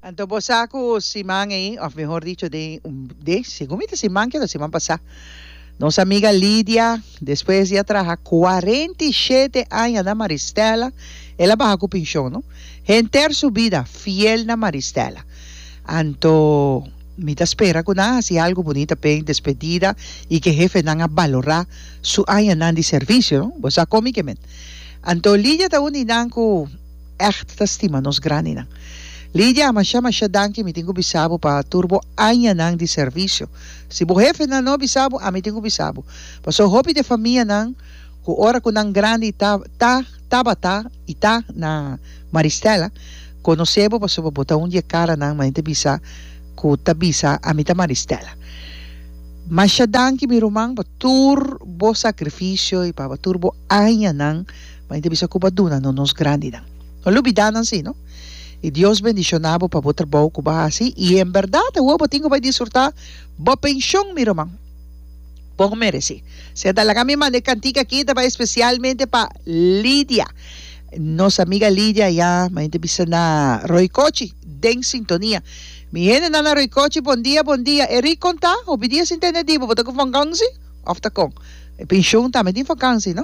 Anto bo sa cu siman ei, of mehor dicho den un de, segun mi ta siman kiet of siman pasá, nos amiga Lidia, despues di a traha cuarenta i shete aña na Maristella, el a baha cu pension, no? Henter su bida fiel na Maristella. Anto mi ta spera cu nan a haci algo bunita p'e despedida i cu e hefenan a balorá su añanan di servicio, no? Bo sa con mi ke men. Anto Lidia ta un di nan cu. echt ta stima nos grandinan. Lidia, masha masha danki mi tin cu bisa bo pa tur bo añanan di servicio. Si bo hefenan no a bisa bo, ami tin cu bisa bo. Paso hopi di e famianan cu ora cu nan grandi ta, ta, tabata y ta na Maristella, conoce bo pasobra bo ta un di e caranan mayormente bisa cu ta bisa ami ta Maristella. Masha danki mi ruman pa tur bo sacrificio y pa tur bo añanan. Ma i ta bisa ku bo a duna no nos grandinan. No lubidá nan si, no? I Dios bendishoná bo pa bo trabou ku bo a hasi, i en bèrdat awor bo tin ku bai disfrutá bo penshon, mi ruman. Bon meresí. Sea ta laga mi manda e kantik akí, ta bai espesialmente pa Lidia. Nos amiga Lidia ayá, mi ta bisa na Roikochi, den sintonia. Mi hendenan na Roikochi, bon dia, bon dia. E Rick kontá, hopi dia sin tende di bo, bo ta ku vakansi òf ta kon? E penshon tambe tin vakansi, no?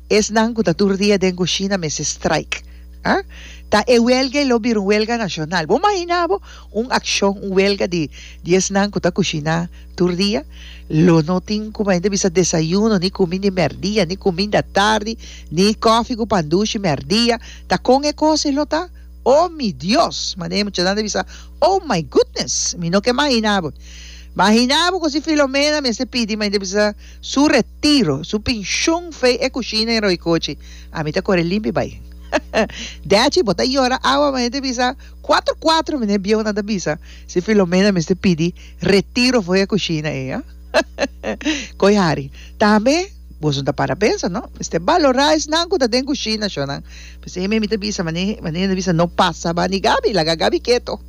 Esnan cu ta tur dia den cushina mester strike. Ah? Ta e huelga y lo bira un huelga nacional. Bo mahina bo un accion, un huelga di di esnan cu ta cushina tur dia? Lo no tin como hende bisa desayuno, ni cumi di merdia, ni cuminda tardi, ni coffee cu pan dushi merdia. Ta con e cos e lo ta? Oh mi Dios! Manera e muchanan ta bisa, Oh my goodness! Mi no ke mahina bo. Mahina bo cu si Filomena mester pidi, ma hende bisa, Su retiro, su pinshun fei e kushina i roikochi. Ami ta kore limpi bai. Dechi, bo ta yora awa mi hende bisa kuater kuater mi n'e bieunan ta bisa si Filomena mester pidi retiro for e kushina ei, a? Koi Harry. Tambe boso ta para pensa, no? Mester balorá esnan ku ta den kushina, shornan. P'esei mi ta bisa, mane, mane ta bisa no pasa bani Gabi, laga Gabi keto.